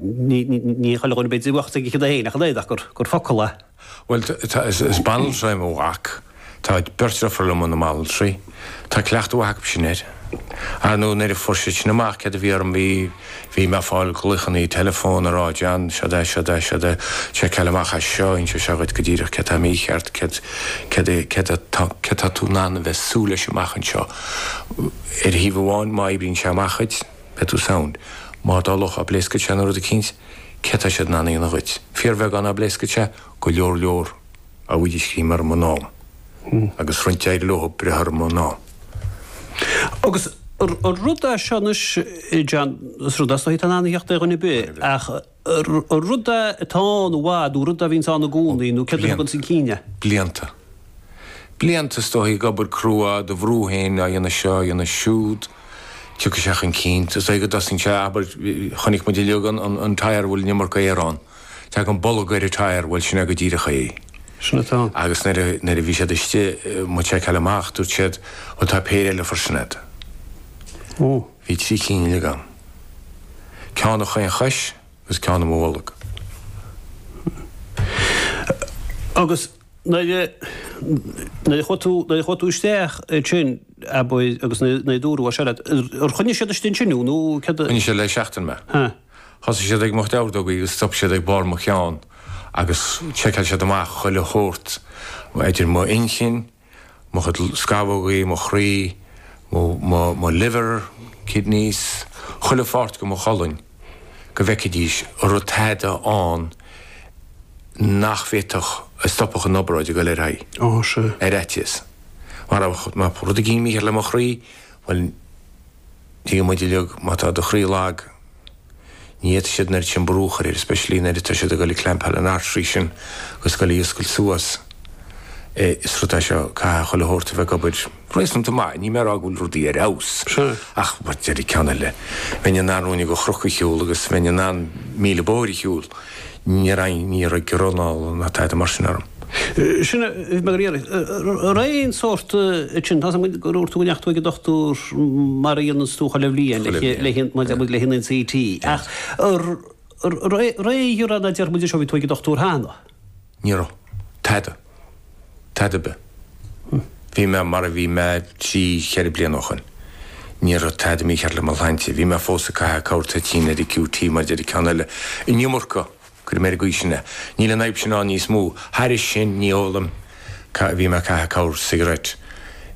Ní chuala duine ar bith de bheocht ag a chionn é féin ach an oiread ach gur focal a. Bhuel, tá, is banaltra é mo mhac, tá beirt deirfiúr liom ina mbanaltraí, tá cleachtadh mhaith acu sin air. Ar ndóigh, nuair a fuair siad sin amach céard a bhí orm, bhí, bhí mé ag fáil glaochanna teileafóin ag rá, John, seo'd é, seo'd é, seo'd é, seiceáil amach é seo, inseoidh sé dhuit go díreach céard atá mícheart, céard, céard é, céard atá, céard atá tú in ann a bheith ag súil leis amach anseo. Ar thaobh amháin, má oibríonn sé amach dhuit, Beidh tú sound. Mar dá dtarlódh go bpléascfadh sé nó rud eicínt, céard atá siad in ann a dhéanamh dhuit? Fíorbheagán dá bpléascfadh sé, go leor leor. go bhfuair siad greim orm in am, agus go raibh an t-ádh leo breith orm in am. Agus an rud é seo anois, John, is rud é seo, atá in ann a thíocht ar dhuine ar bith, ach. rud atá ann i bhfad, nó rud a bhíonns ann i gcónaí, nó céard a thuganns chun cinn é. Blianta. Blianta, is dóichí, ag obair crua, do bhrú féin, á dhéanamh seo, á dhéanamh siúd. Tiocfaidh sé chun cinn. Is dóichí go dtosaíonn sé, abair, chonaic muid uilig an an tire a bhfuil an iomarca aer ann. Tagann bolg ar an tire, bhuel, sin é go díreach é. Sin atá ann. Agus nuair a, nuair a bhí siad istigh, do mo sheiceáil amach, dúirt siad, bhuel, tá péire eile freisin agat. Ó. Bhí trí cinn uilig ann. Ceann i chaon chois agus ceann i mo bholg. Agus nuair a, nuair a chuaigh tú, nuair a chuaigh tú isteach ansin, abair, agus nuair, nuair a dúradh mar seo leat, ar choinnigh siad istigh ansin thú nó céard a? Choinnigh siad le seachtain mé. Thosaigh siad ag mo chuid ordógaí agus stop siad ag barr mo cheann agus sheiceáil siad amach chuile shórt idir m'inchinn, mo chuid scamhógaí, mo chroí, mo, mo liver, kidneys, chuile pháirt de mo cholainn, go bhfeicfidís an raibh tada ann nach bhféadfadh, a stopfadh an obráid ag dul ar aghaidh. Ó, sea. Ar fhaitíos. Mar a raibh, má tá rud éigin mícheart le mo chroí, bhuel, tuigeann muid uilig, má tá do chroí lag, Ní fhéadfaidh siad an oiread sin brú a chur air, especially nuair atá siad ag dul ag clampáil an artery sin agus ag dul ag oscailt suas é is rud é seo, caithfidh chuile shórt a bheith ag obair réasúnta maith, níl mé ag rá go bhfuil rudaí ar fheabhas ach, mar a deir an ceann eile, bheinn in ann ruainne de chnoc a shiúl agus bheinn in ann míle bóthair a shiúl. Ní raibh, ní raibh giorra anála ná tada mar sin orm. Sin a bhí mé ag iarraidh. An raibh aon sórt hint, tá a fhios agam gur dhúirt tú go ndeachaigh tú ag an dochtúir mar a dhéananns tú chuile bhliain le haghaidh an NCT. Ach an raibh aon ghiorra anála, déarfaidh muid anois, ó bhí tú ag an dochtúir cheana. Ní raibh. Tada. Tada ar bith. Bhí mé mar a bhí mé trí, cheithre bliana ó shin. Ní raibh tada mícheart le mo shláinte. Bhí mé fós ag caitheamh corrthoitín ar an QT, mar a deir an ceann eile. An iomarca! Cuirfidh mé ar an gcaoi sin é. Níl an fhadhb sin ann níos mó. Thairis sin, ní ólaim. Bhí mé ag caitheamh corr-cigarette.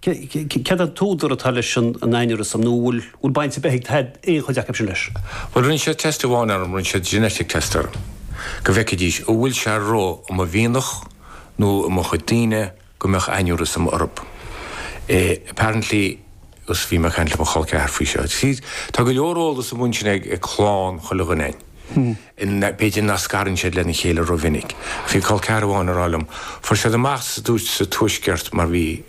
Cad é an t-údar atá leis an aneurysm, nó an bhfuil baint ar bith ag aon chuid acu sin leis? Bhuel, rinne siad test amháin orm, rinne siad genetic test orm, go bhfeicfidís, an bhfuil sé i mo mhianach, nó i mo chuid daoine, go mbeadh aneurysm orthub. Apparently, agus bhí mé ag caint le mo chol ceathar faoi seo, tá go leor eolas amuigh ansin ag clann chuile dhuine againn, B'fhéidir nach scarann siad é lena chéile rómhinic, ach bhí col ceathar amháin ag rá liom, fuair siad amach sa dúirt sa Tuaisceart mar bhí,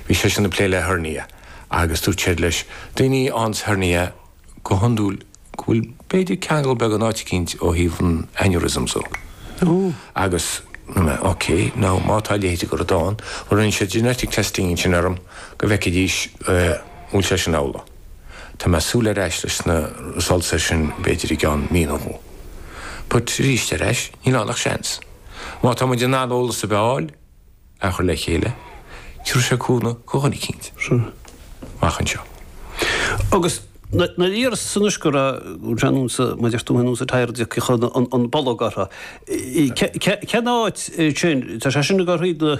bhí seisean ag plé le hernia agus dúirt siad leis, daoine ansin le hernia go hiondúil, go bhfuil b'fhéidir ceangal beag in áit eicínt ó thaobh an aneurysm seo. Agus ok, now má tá a leithéid i gceist, bhuel rinne siad genetic testing ansin orm go bhfeicfidís an bhfuil sé sin amhlaidh. Tá mé ag súil ar ais leis na results ar sin b'fhéidir i gceann mí nó dhó. But aríst ar ais, níl ann ach seans. Má tá muid in ann eolas a fháil, a chur le chéile, tiúrfaidh sé cúnamh do dhuine eicínt. Sure. Amach anseo. Agus nuair a d'iarras anois go raibh John Hume sa, mar a deir tú féin, sa Tyre d'íoc chun an bolg orthu. Cén áit sin, tá sé sin ag ar thaobh na.